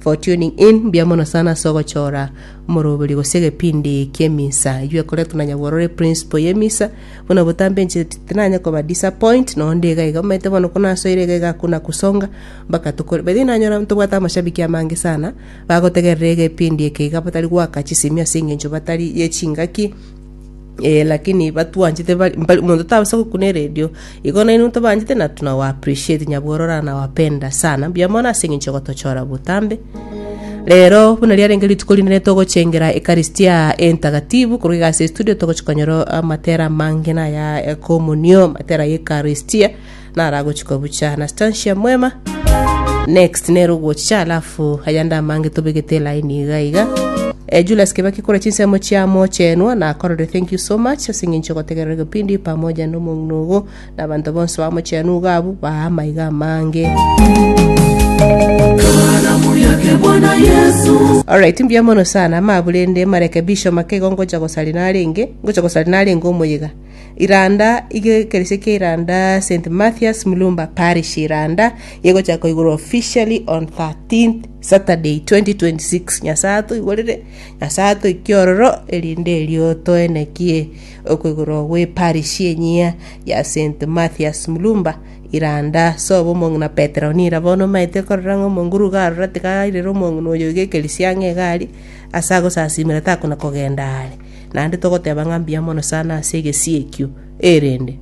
for tuning in, mbuya mono sana ase ogochora omoroberi gose egepindi ki'emisa eywo ekoretwe na nyagoro ore principal y'emisa buna obotambe inche tinanye koba disappoint nonye onde iga iga omanyete bono ko nasoire iga iga hakuna kusonga mpaka tokore by the way nanyora ntobwate amashabiki amange sana bagotegerera egepindi eke iga batari goaka chisimio ase eng'encho batari ye chingaki Eh, lakini batwanchete bari- mbari- omonto tabasa gokuna eredio igo nainwe tobanchete na tunawa appreciate nyabworora nawapenda sana mbuya mono ase eng'encho ya gotochora botambe rero buna riarenge rituko rinene togochengera ekaristia entagatifu korwa iga ase studio togochia konyora amatera amange na aya ekomonio matera ya ekaristia naro agochikwa bucha na Stancia Mwema. Next nere ogochicha alafu ayande amange tobegete line iga iga. Eh, Julius Kibaki kore chinsemo chiamo chenwa na korore thank you so much ase ng'encho ogotegerera kipindi pamoja na omong'ina ogo na abanto bonsi bamo chenu iga abu baa amaiga amange. Alright, mbuya mono sana maburende marekebisho make igo ngocha gosari narenge ngocha gosari narenge omoyiga Iranda ige ekerecha kia Iranda St. Mathias Mulumba Parish Iranda yegochia koigurwa officially on 13 Saturday 2026 Nyasae atoigorere Nyasae atoikie ororo erinde erio toenekie okoigurwa gwe parish enyia ya St. Mathias Mulumba Iranda sobo omong'ina Petero nira bono omaete korora ng'a omonguru iga arora tiga airera omong'ina oyo iga ekeresia ang'e iga aria Ase agosasimera takona kogenda aare, naende togoteba ng'a mbuya mono sana ase egesie ekio. Erinde.